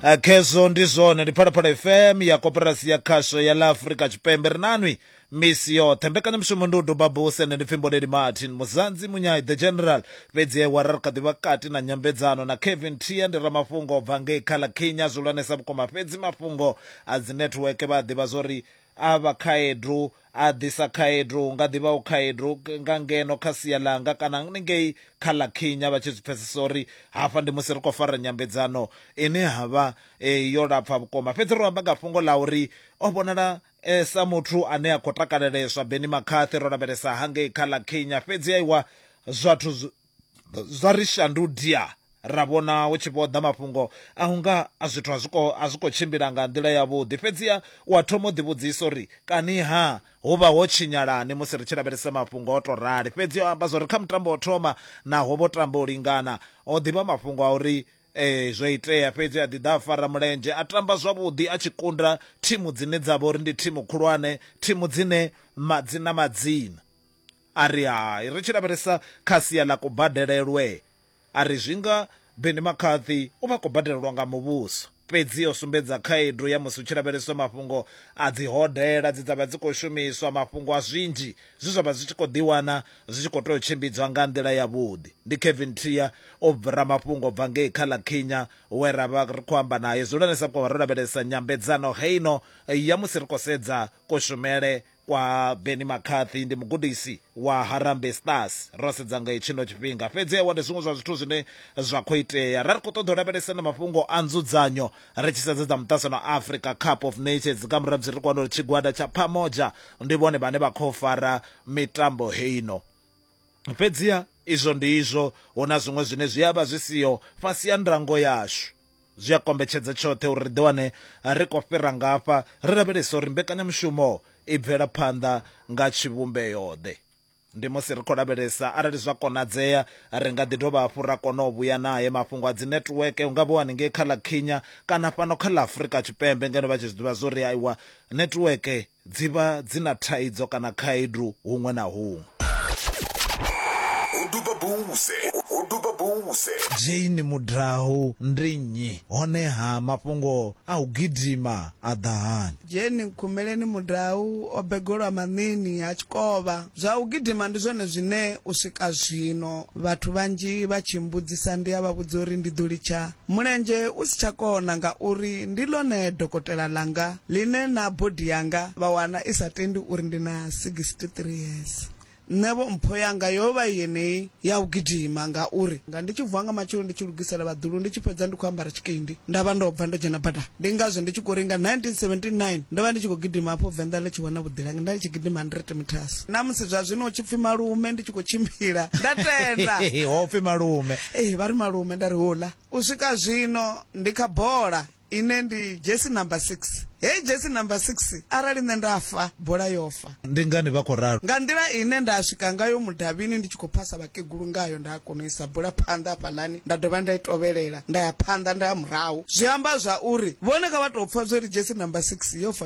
A khezwo ndi zwone ndi phalaphala fm ya koperasi ya khasho ya la afurika tshipembe ri nanwi misi yoṱhe mbekanyamushumo ndi u duba buse nṋe ndi pfhi mboleli martin muzanzi munyai the general fhedzi ewara ri kha ḓi vha kati na nyambedzano na kevin tia ndi ramafhungo o bva ngei kha ḽa kenya zwihulwanesa vhukuma fhedzi mafhungo a dzi netiweke vha a ḓivha zwo ri A vha khaedu, a ḓisa khaedu, hu nga ḓi vhaho khaedu nga ngeno kha sia ḽanga kana ngei kha ḽa Khinya vha tshi zwi pfesesa uri hafha ndi musi ri khou fara nyambedzano ine ha vha yo lapfa vhukuma. Fhedzi ro amba nga fhungo ḽa uri o vhonala e sa muthu ane a khou takaleleswa. Benni McCarthy, Ro lavhelesa hangei kha ḽa Khinya, fhedzi aiwa, zwathu zwa ri shandudia ra vhona hu tshi vho ḓa mafhungo a hunga a zwithu a zwiko a zwiko tshimbila nga nḓila ya vhuḓi fhedziha wa thoma u ḓi vhudzisa uri kani ha hu vha ho tshinyalani musi ri tshi lavhelesa mafhungo o to rali fhedzi o amba zwori kha mutambo o thoma naho vho tamba u lingana o ḓivha mafhungo a uri eh zwo itea fhedzi a ḓi ḓa a fara mulenzhe a tamba zwavhuḓi a tshi kunda thimu dzine dza vha uri ndi thimu khulwane thimu dzine madzina madzina A ri, Hai. Ri tshi lavhelesa kha sia ḽa kubadelelwe, a ri, Zwi nga Benny McCarthy u vha a khou badelelwa nga muvhuso. Fhedzi o sumbedza khaedu ya musi hu tshi lavheleswa mafhungo a dzihodela dze dza vha dzi khou shumiswa, mafhungo a zwinzhi zwe zwa vha zwi tshi khou ḓiwana zwi tshi khou tea u tshimbidzwa nga nḓila yavhuḓi. Ndi Kevin Trier o bvra mafhungo u bva ngei kha ḽa Kenya we ra vha ri khou amba nae. Dzulani sa vhukuma ro lavhelesa nyambedzano heino ya musi ri khou sedza kushumele Kwa Benni McCarthy ndi mugudisi wa Harambee Stars. Ro sedza nga hetshino tshifhinga fhedzi awa ndi zwiṅwe zwa zwithu zwine zwa khou itea. Ra ri khou ṱoḓa u lavhelesa na mafhungo a nzudzanyo ri tshi sedza dza muṱasano wa Africa Cup of Nations nga murahu musi ri khou wana uri tshigwada tsha Pamoja ndi vhone vhane vha khou fara mitambo heino. Fhedziha izwo ndi izwo, hu na zwiṅwe zwine zwi a vha zwi siho fhasi ha ndango yashu. Zwi a kombetshedza tshoṱhe uri ri ḓiwane ri khou fhira ngafha ri lavhelesa uri mbekanyamushumo i bvela phanḓa nga tshivhumbeo-ḓe. Ndi musi ri khou lavhelesa arali zwa konadzea ri nga ḓi dovha hafhu ra kona u vhuya nae mafhungo a dzinetiweke, hu nga vha haningei kha ḽa Kenya kana fhano kha ḽa Afrika Tshipembe ngeno vha tshi zwi ḓivha zwa uri aiwa netiweke Dzi vha dzi na thaidzo kana khaedu huṅwe na huṅwe. Jane Mudahu ndi nnyi, honeha mafhungo a u gidima a ḓa hani? Jane Nkhumeleni Mudahu o begolwa Maṋiini ha Tshikovha. Zwa u gidima ndi zwone zwine u swika zwino vhathu vhanzhi vha tshi mmbudzisa ndi a vha vhudza uri ndi ḓo litsha Mulenzhe u si tsha kona ngauri ndi ḽone dokotela ḽanga ḽine na body yanga vha wana i sa tendi uri ndi na 63 years. Nṋevho mpho yanga yo vha i yeneyi ya u gidima ngauri nga ndi tshi vuwa nga matsheloni ndi tshi lugisela vhaḓulu ndi tshi fhedza ndi khou ambara tshikindi nda vha ndo bva ndo dzhena badani. Ndi ngazwo ndi tshi khou ri nga 1979 ndo vha ndi tshi khou gidima hafho Venḓa ḽi tshi wana vhuḓilangi nda ndi tshi gidima 100 metres. Na musi zwa zwino hu tshi pfi malume ndi tshi khou tshimbila nda tenda. Ho pfi malume Ee, vha ri malume. Nda ri hula u swika zwino ndi kha bola ine ndi dzhesi namba six. Heyi dzhesi namba six arali nṋe nda fa, bola yo fa. Ndi ngani vha khou ralo? Nga nḓila ine nda swika ngayo mudavhini ndi tshi khou phasa vhakegulu ngayo, nda kona u isa bola phanḓa hafhaḽani nda dovha nda i tovhelela nda ya phanḓa nda ya murahu, zwi amba zwa uri vhone kha vha tou pfa zwo ri dzhesi namba six yo fa.